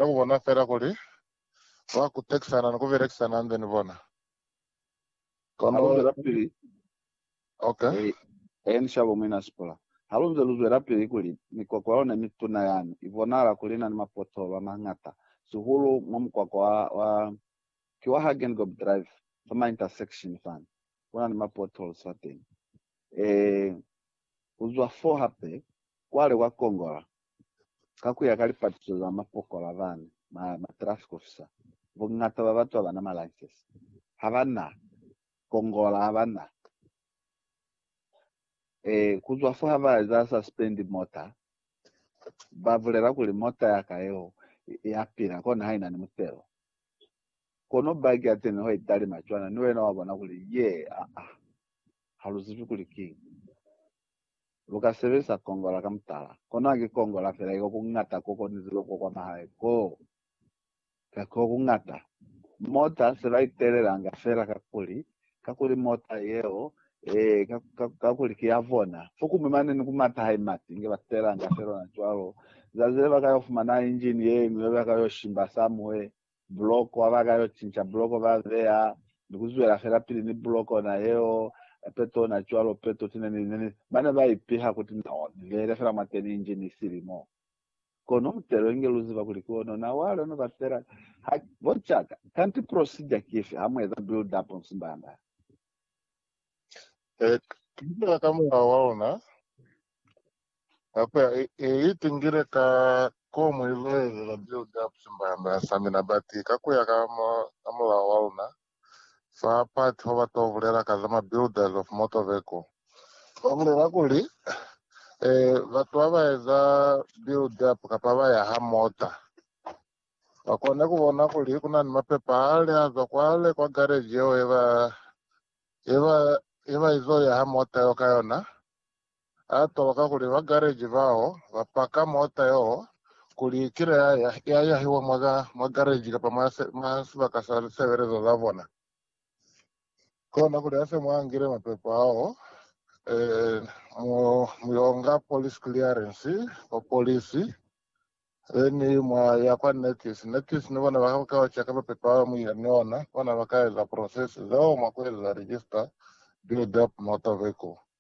Ka ku bona fela kuli ba kutekisana ni ku belekisana hande ni bona. Ha lu zwelapili, Ok. He, ni shabo Muina Sipula. Ha lu nze lu zwelapili kuli mikwakwa yona ye mituna yani, i bonahala kuli ina ni mapothoolo a mañata, sihulu mwa mukwakwa wa, wa, ki wa Hagengob Drive, fa ma intersection fani. Ku na ni mapotholes fateñi. Ee, ku zwa foo hape, kwa le kwa kongola. Ka ku ya ka lipatuso za mapokola bani, matraffic officer, buñata bwa batu habana ma license, habana kongola, habana e, kuzwa fo ha ba eza suspend mota, ba bulela kuli mota ya ka yeo ya pila kona ha ina ni mutelo. Kono bag ya teni ho italima cwana, ni wena wa bona kuli ye, aa, ha lu zibi kuli kiñi. lu ka sebelisa kongola ka mutala. Kono haki kongola fela iko ku ñata ko konizilwe ko kwa mahae koo, ka koo ku ñata. Mota se ba i telelanga fela kakuli, kakuli mota yeo, ee, ka, ka, kakuli ki ya bona. Fokuñwi mane ni ku mata ha i mati, inge ba telelanga fela ona cwalo. Zazi le ba ka yo fumana injini ye ñwi yo ba ka yo shimba somewhere, buloko ha ba ka yo cinca buloko ba beya ni ku zwela fela pili ni buloko na yeo hape tona cwalo peto tine ni ne ni ba ne ba ipiha kuti no ni lele fela mwateni inji ni silimo kono mutelo inge lu ziba kuli ki ona na wa lona ba fela ha bo caka kanti procedure ki ifi ha mu eza build up nsimbanda eh tupela ka mulao wa ona Hape i itingile ka k'o mu iluhelela build-up simbanda sa mina bati ka ku ya ka mulao wa luna fa part ho ba to bulela ka za ma builders of motor vehicle. Ba bulela kuli, Batu ha ba eza build-up kapa ba yaha mota, ba kone ku bona kuli ku na ni mapepa ale a zwa kwale kwa garage yeo ye ba izo yaha mota yeo ka yona. A twa kakuli ba gareji bao ba paka mota yeo kuli ki le ya yahiwa mwa gareji kapa mwa sibaka sa lisebelezo za bona. Kona kuli ase mwa ngile mapepo ao, mu yo nga police clearance kwa polisi, then mwa ya kwa NACS. NACS ni bona ba ka u cheka mapepo ao mu ya ni ona, bona ba ka eza process zeo mwa ku eza register build up motor vehicle.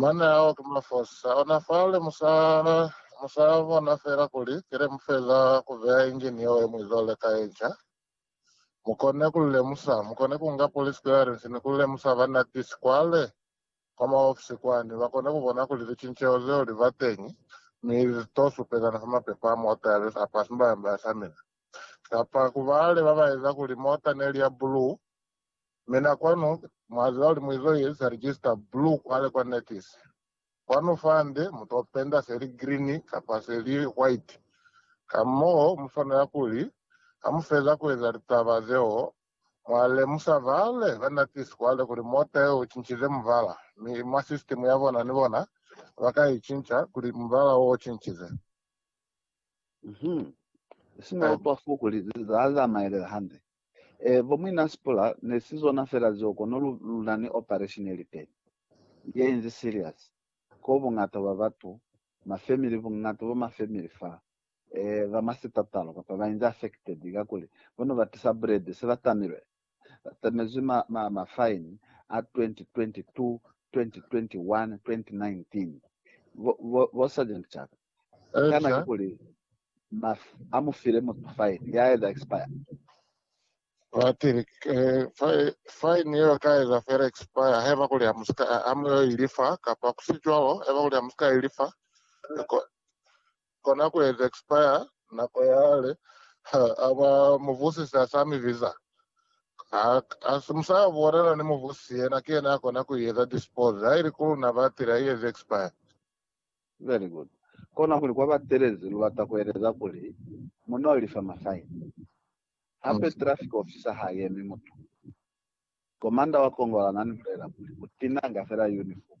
Mane ao ki mafosa ona fale musa musa bona fela kuli kile mufeza ku beya engine yeo ye muizole ka yenca. Mukone ku lemusa, mukone ku nga police clearance ni ku lemusa ba NAPIS kwale kwa maofisi kwani bakone ku bona kuli licinceho zeo li ba teñi mi li to supezana fa mapepa a mota ya besa apa simbayambaya sa mina kapa ku bale ba ba eza kuli mota ne li ya blue Mina kwanu mwaziba kuli muizo ye sa register blue kwale kwa Natis. Kwanu fande muto penda se li green kapa se li white. Kamoo muswanela kuli hamufeza kueza litaba zeo mwa lemusa vale ba Natis kwale kuli mota yeo ucincize mubala, mi mwa system yabona ni bona baka icinca kuli mubala wo ucincize. Mhm. Si na utwa fo kuli za zamaelela hande. E, bo muina Sipula, ne si zona fela zeo kono lu, lu na ni operation ye liteni. Ye inzi serious. Ko bungata bwa batu, ma family, bungata bwa ma family fa, e, ba mwa sitatalo, kapa ba inzi affected, kakuli bo ne ba tisa bulede, se ba tamilwe. Ba tamezwi ma, ma, ma fine a 2022, 2021, 2019. Bo, bo, bo Sergeant Chaka. Kana ki kuli mafi a mu file mutu faini ya eza expire? Batili, Faini yeo ka eza fela expire haiba kuli ha mu yo ilifa, kapa ku si cwalo, haiba kuli ha mu si ka ilifa, kona ku eza expire nako ya hale. Ha ba muvusisi a sa mi biza, mu sa yo bulela ni muvusisi, yena ki yena a kona ku i eza dispose. Ha ili ku luna batili, ha i ezi expire. Very good. Kona kuli kwa batelezi lu lata ku eleza kuli mu no lifa ma fine. Hape traffic officer ha yemi mutu. Commander wa Kongola na ni bulela kuli u tinanga fela uniform.